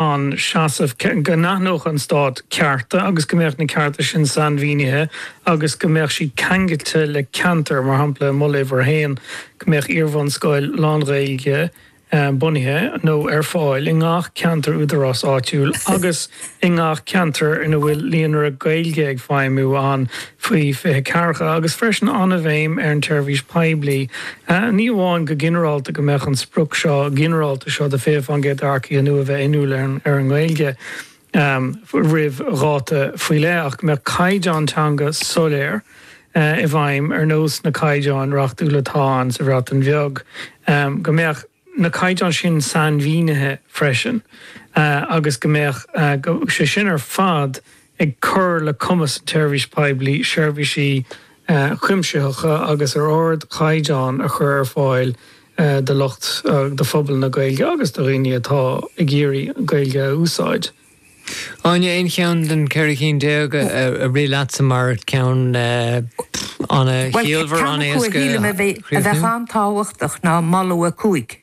an seasamh go n-aithneodh an Stát cearta agus go mbeadh na cearta sin sainmhínithe agus go mbeadh siad ceangailte le ceantar, mar shampla, i Moladh Uimhir 1, go mbeadh iarbhunscoil lán-Ghaeilge bunaithe nó ar fáil i ngach ceantar údaráis áitiúil agus i ngach ceantar ina bhfuil Líonra Gaeilge ag feidhmiú ann. faoi 20 ceathracha, agus freisin an-bhéim ar an tseirbhís poiblí, ní amháin go ginearálta go mbeadh an sprioc seo ginearálta seo de 20% d'earcaigh nua bheith inniúil ar an nGaeilge roimh dháta faoi leith ach go mbeadh caighdeán teanga soiléir i bhfeidhm ar nós na caighdeáin reachtúla atá ann sa Bhreatain Bheag, go mbeadh. na caighdeáin sin sainmhínithe freisin agus go mbeadh sé sin ar fad ag cur le cumas an tseirbhís poiblí seirbhísí cuimsitheacha agus ar ardchaighdeán a chur ar fáil do lucht, do phobal na Gaeilge agus do dhaoine atá ag iarraidh an Ghaeilge a úsáid. Áine, Aon cheann den cheithre cheann déag a rith leatsa mar cheann an-chiallmhar, an-éasca a chríochnú? Bhuel, ceann acu a shílim a bheadh an-tábhachtach ná Moladh 5.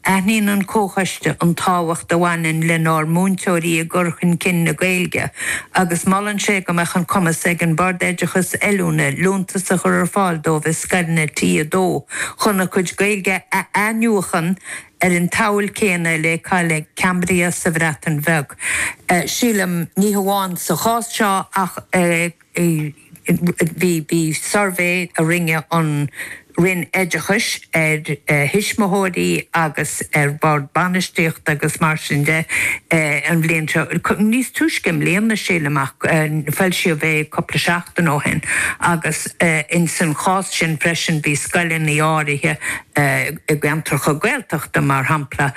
Aithníonn an Comhchoiste an tábhacht a bhaineann lenár múinteoirí i gcur chun cinn na Gaeilge agus molann sé go mbeadh an cumas ag an mBord Oideachais Oiliúna liúntas a chur ar fáil dóibh i scoileanna T2 chun a gcuid Gaeilge a athnuachan Ar an tsamhail chéanna le Camau Cymraeg sa Bhreatain Bheag, sílim, ní hamháin sa chás seo ach bhí suirbhé a rinne an Roinn Oideachais ar thuismitheoirí agus ar bhoird bainistíochta agus mar sin de an bhliain seo, níos túisce i mbliana, sílim, ach foilsíodh é cúpla seachtain ó shin, agus insan chás sin freisin bhí scoileanna áirithe i gceantracha Gaeltachta, mar shampla,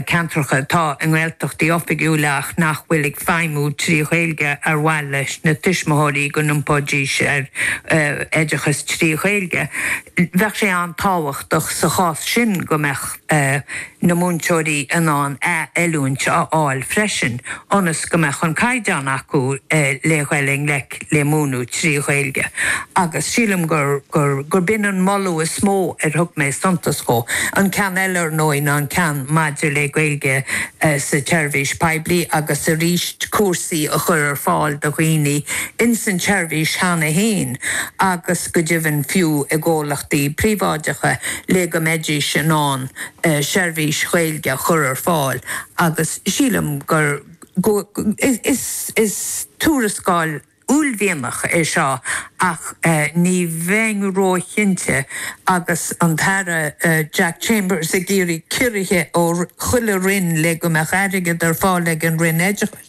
ceantracha atá i nGaeltachtaí oifigiúla ach nach bhfuil ag feidhmiú trí Ghaeilge ar mhaith leis na tuismitheoirí go n-iompóidís ar oideachas trí Ghaeilge. Bheadh sé an-tábhachtach sa chás sin go mbeadh na múinteoirí in ann athoiliúint a fháil freisin ionas go mbeadh an caighdeán acu le gabháil i ngleic le múineadh trí Ghaeilge agus sílim gur, gur, gur b'in an moladh is mó ar thug mé suntas dhó. An ceann eile, ar ndóigh, ná an ceann maidir le Gaeilge sa tseirbhís poiblí agus arís cúrsaí a chur ar fáil do dhaoine ins an tseirbhís cheana fhéin agus go deimhin fiú i gcomhlachtaí príobháideacha le go mbeidís in ann seirbhís Ghaeilge a chur ar fáil agus sílim gur. go, is, is tuarascáil uaillmhianach é seo ach ní bheinn róchinnte agus an tAire Jack Chambers ag iarraidh ciorruithe ó chuile roinn le go mbeidh airgead ar fáil ag an Roinn Oideachais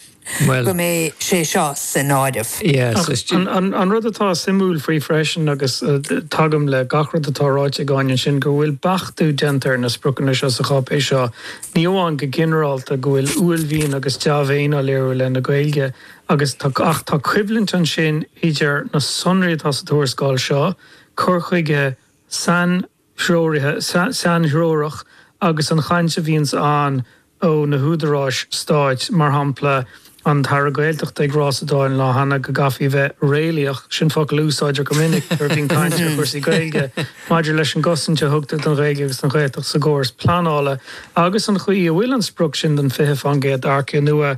go mbeidh sé seo san áireamh. Ach an rud atá suimiúil faoi freisin, agus tagaim le gach rud atá ráite ag Áine ansin, go bhfuil beachtú déanta ar na spriocanna seo sa cháipéis seo Ní amháin go ginearálta go bhfuil uaillmhian agus dea-mhéin á léiriú i leith na Gaeilge agus tá ach tá coimhlint ansin idir na sonraí atá sa tuarascáil seo, cur chuige sainthreorach agus an chaint a bhíonns ann ó na húdaráis stáit, mar shampla, an tAire Gaeltachta ag rá sa Dáil an lá cheana go gcaithfí a bheith 'réalaíoch', sin focal a úsáidtear go minic nuair a bhíonn caint ar chúrsaí Gaeilge, maidir leis an gcosaint a thugtar don Ghaeilge agus don Ghaeltacht sa gcóras pleanála agus an chaoi a bhfuil an sprioc sin den 20 fán gcéad d'earcaigh nua,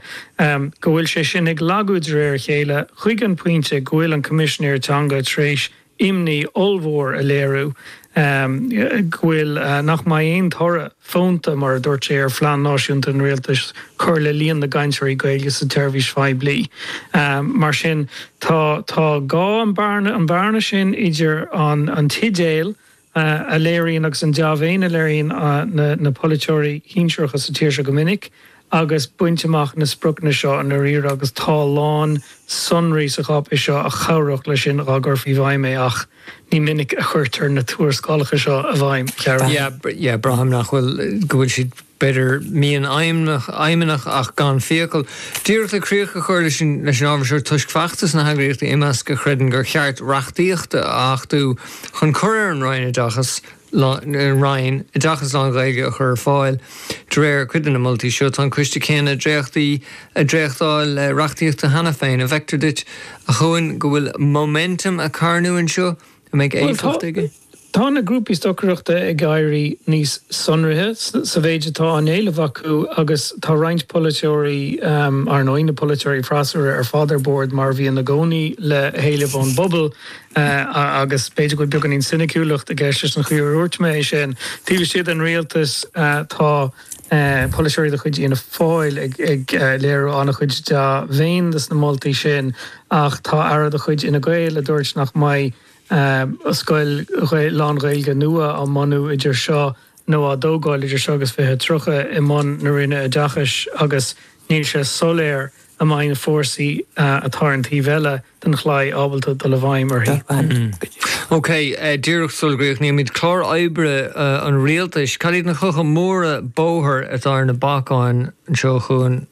go bhfuil sé sin ag lagú de réir a chéile, chuig an bpointe go bhfuil an Coimisinéir Teanga tar éis imní ollmhór a léiriú go bhfuil, nach mbeidh aon toradh fónta, mar a dúirt sé, ar phlean náisiúnta an Rialtais cur le líon na gcainteoirí Gaeilge sa tseirbhís phoiblí. Mar sin, tá, tá an bhearna sin idir an t-idéal a léiríonn agus an dea-mhéin a léiríonn na polaiteoirí sinsearacha sa tír seo go minic agus baint amach na spriocanna seo i ndáiríre agus tá a lán sonraí sa cháipéis seo a chabhródh leis sin dhá gcuirfí i bhfeidhm é ach ní minic a chuirtear na tuarascálacha seo i bhfeidhm, a Chiaráin. Yeah, yeah, braithim nach bhfuil, go bhfuil siad. b'fhéidir, mian aidhmeannach ach gan fiacail. Díreach le críoch a chur leis an ábhar seo tuairisc, feachtas na heagraíochta Imeasc a chreideann gur cheart reachtaíocht a achtú chun cur ar an Roinn oideachas lán-Ghaeilge a chur ar fáil. De réir cuid de na moltaí seo, tá an coiste céanna dréachtaí ag dréachtáil reachtaíochta cheana féin. An bhfeictear duit, a Chuain, go bhfuil 'momentum' ag carnadh anseo a mbeidh éifeacht aige. Tá na grúpaí stocaireachta ag éirí níos sonraithe sa mhéid atá á éileamh acu agus tá roinnt polaiteoirí, ar ndóigh, na polaiteoirí freasúra, ar fad ar bord, mar a bhíonn i gcónaí, le héilimh ón bpobal agus b'fhéidir go bhfuil beagáinín soiniciúlacht i gceist leis an chaoi ar dhúirt mé é sin. Taobh istigh den rialtas tá polaiteoirí de chuid Fhianna Fáil ag léiriú an-chuid dea-mhéin dos na moltaí sin ach tá aire de chuid Fhine Gael a dúirt nach mbeidh aon scoil lán-Ghaeilge nua á bunú idir seo nó á tógáil idir seo agus 2030 i mbun na Roinne Oideachais agus níl sé soiléir an mbeidh na fórsaí atá ar an taobh eile den chlaí ábalta dul i bhfeidhm uirthi. OK, díreach sula gcríochnaímid clár oibre an rialtais, cad iad na clocha móra bóthair atá ar na bacáin anseo chugainn?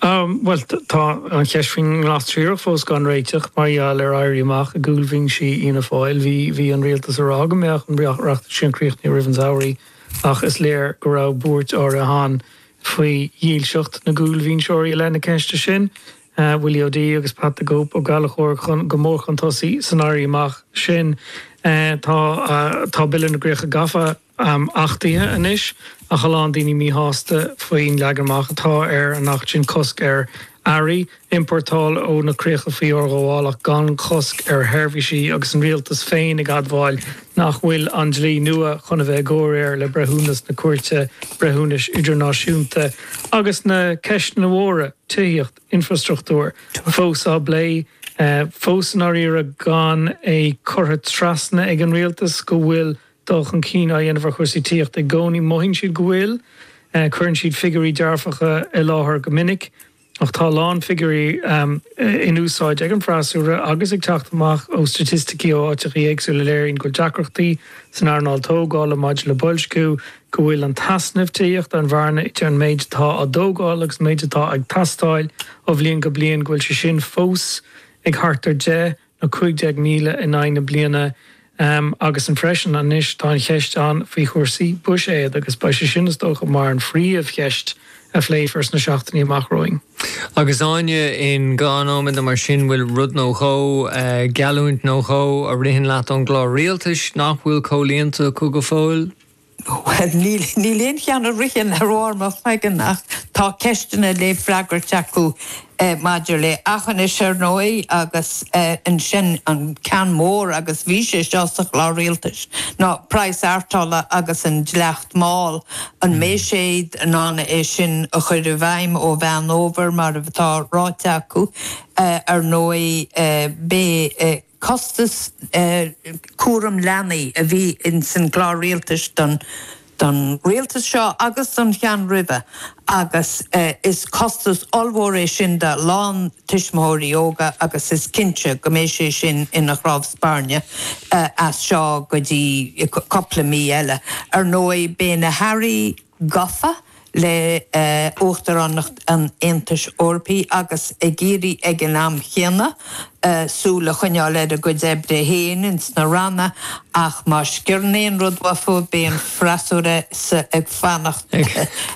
Bhuel, tá an cheist faoin nGlas Triarach fós gan réiteach mar gheall ar éirí amach i gcúlbhinsí Fhianna Fáil. Bhí an rialtas ag rá go mbeadh an reachtaíocht sin críochnaithe roimh an samhradh ach is léir go raibh buairt áirithe ann faoi dhílseacht na gcúlbhinseoirí i leith na ceiste sin, Willie O'Dea agus Pat 'the Cope' Ó Gallchóir go mór chun tosaigh san éirí amach sin. Tá Bille na gCríocha Gafa. achtaithe anois ach a lán daoine míshásta faoin leagan amach atá ar an acht sin, cosc ar earraí a iompórtáil ó na críocha faoi fhorghabháil ach gan chosc ar sheirbhísí, agus an rialtas féin ag admháil nach bhfuil an dlí nua chun a bheith i gcomhréir le breithiúnas na Cúirte Breithiúnais Idirnáisiúnta agus na ceisteanna móra, tithíocht, infreastruchtúr, fós á bplé. Fós i ndáiríre, gan é curtha trasna ag an rialtas go bhfuil dul chun cinn á dhéanamh ar chúrsaí tithíochta i gcónaí. Mothaíonn siad go bhfuil. Cuireann siad figiúirí dearfacha i láthair go minic, ach tá a lán figiúirí in úsáid ag an bhfreasúra agus ag teacht amach ó staitisticí ó áiteachaí éagsúla a léiríonn go bhfuil deacrachtaí san earnáil tógála maidir le boilsciú, go bhfuil an t-easnamh tithíochta, an bhearna idir an méid atá á dtógáil agus an méid atá ag teastáil ó bhliain go bliain, go bhfuil sé sin fós ag thart ar 10 nó 15,000 in aghaidh na bliana agus an freisin anois tá an cheist ann faoi chúrsaí buiséid agus beidh sé sin is dócha mar an phríomhcheist a phléifear sna seachtainí amach romhainn. Agus Áine, in aon nóiméad amháin mar sin bhfuil rud nó dhó, geallúint nó dhó, a ritheann leat ón gclár rialtais nach bhfuil comhlíonta acu go fóill? Bhuel, níl aon cheann a ritheann ar bharr mo chloigeann ach tá ceisteanna le freagairt acu maidir le hAughinish, ar ndóigh, agus ansin an ceann mór, agus bhí sé seo sa Chlár Rialtais, ná praghas peitril agus an dleacht máil, an mbeidh siad in ann é sin a chur i bhfeidhm ó Mheán Fhómhair mar atá ráite acu? Ar ndóigh, beidh costas cúraim leanaí a bhí ins an gClár Rialtais don don Rialtas seo agus don cheann roimhe agus is costas ollmhór é sin do a lán tuismitheoirí óga agus is cinnte go mbeidh sé sin ina chnámh spairne as seo go dtí cupla mí eile. Ar ndóigh, beidh na hAirí, gafa le hUachtaránacht an Aontais Eorpaigh agus ag iarraidh ag an am chéanna súil a choinneáil ar a gcuid oibre féin ins na ranna ach má sciorrann aon rud uathu beidh an freasúra sa ag fanacht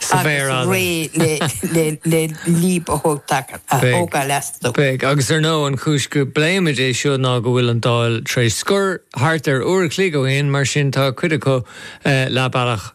sa bhféar fhada, réidh le leadhb a thógáil astu. Beidh, agus ar ndóigh an chúis go bpléimid é seo ná go bhfuil an Dáil tar éis scor thart ar uair a chloig ó shin mar sin tá cuid acu le bealach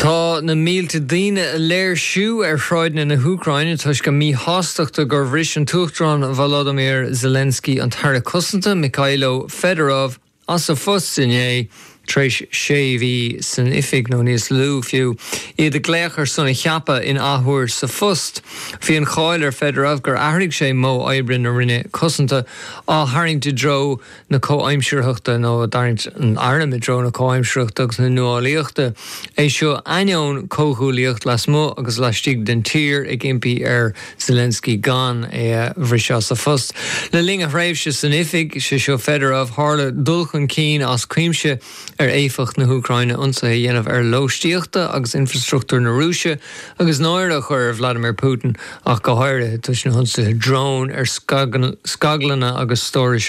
Tá na mílte daoine ag léirsiú ar shráideanna na hÚcráine toisc iad míshásta gur bhris an tUachtarán Volodymyr Zelensky an tAire Cosanta, Mykhailo Fedorov, as a phost inné, tar éis sé mhí san oifig, nó níos lú fiú, iad ag glaoch ar son a cheaptha in athuair sa phost. Bhí an cháil ar Fedorov gur athraigh sé modh oibre na Roinne Cosanta, á tharraingt i dtreo, na comhaimsearthachta nó ag tarraingt an airm i dtreo na comhaimsearthachta agus na nuálaíochta. É seo ainneoin comhghuaillithe lasmuigh agus laistigh den tír ag impí ar Zelensky gan é a bhriseadh as a phost. Le linn a thréimhse san oifig, sé seo Fedorov, tharla dul chun cinn as cuimse ar éifeacht na hÚcráine ionsaithe a dhéanamh ar lóistíochta agus infrastruchtúr na Rúise agus náire a chur ar Vladimir Putin ach go háirithe toisc na hionsaithe drón ar scaglanna agus stórais